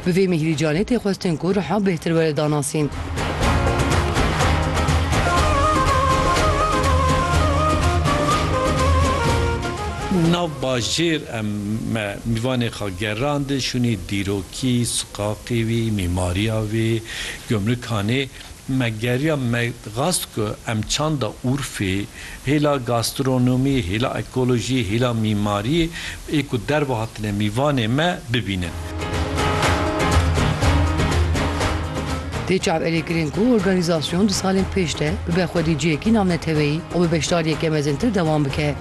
Bi vê Mîhrî Canê tê xwestin ku riha bêhtir were danasîn. Nav bajêr em me Mîvanê xwe gerandin şûnê dîrokî, siqaqê wî, mîmariya wê, gumrikhanê. Me geriya me xwest ku em çanda Urfê, hêla gastronomiyê, hêla ekolojiyê, hêla mîmariyê ê ku derve hatine mîvanê me bibînin. Tê çavêrêkirin ku organîzasyon di salên pêş de bibe xwedî cihekî navneteweyî û bi beşdariyeke mezintir dewam bike.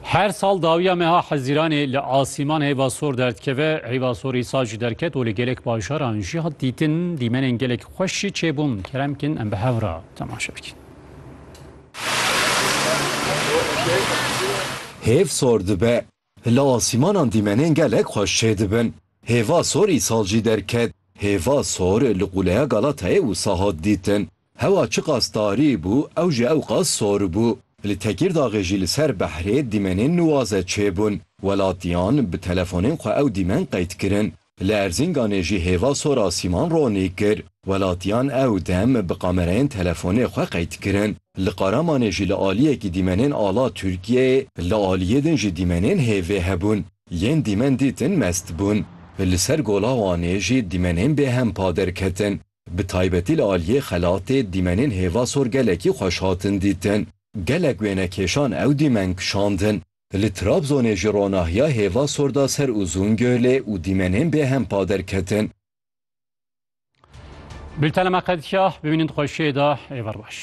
Her sal dawiya meha Hezîranê li asîman heyva sor derdikeve, heyva sorî sa jî derket û li gelek bajaran jî hat dîtin dîmenên gelek xweş jî çêbûn. Kerem kin em bi hev re temaşe bikin. Hêv sor dibe, Li asîmanan dîmenên gelek xweş çêdibin. Hêva sor îsal jî derket. Hêva sor li Quleya Galatayê wisa hat dîtin. Hewa çiqas tarî bû, ew jî ewqas sor bû. Li Tekîrdaxê jî li ser behrê dîmenên nuwaze çêbûn. Welatiyan bi telefonên xwe ew dîmen qeyd kirin. Li Erzînganê jî hêva sora Sîman Ronî kir. Welatiyan ew dem bi kamereyên telefonê xwe qeyd kirin. Li Qaramanê jî li aliyekî dîmenên ala Tirkiyeyê, li aliyê din jî dîmenên hêvê hebûn. Yên dîmen dîtin mest bûn. Li ser Gola Wanê jî dîmenên bêhem pa derketin. Bi taybetî li aliyê Xelatê dîmenên hêva sor gelekî xweş hatin dîtin. Gelek wênekêşan ew dîmen kişandin. Li Trabzonê ji ronahiya hêva sor da ser Uzungölê û dîmenên bêhem pa derketin. Bultena me qedîya, bimînin xweşiyê de, êvar baş.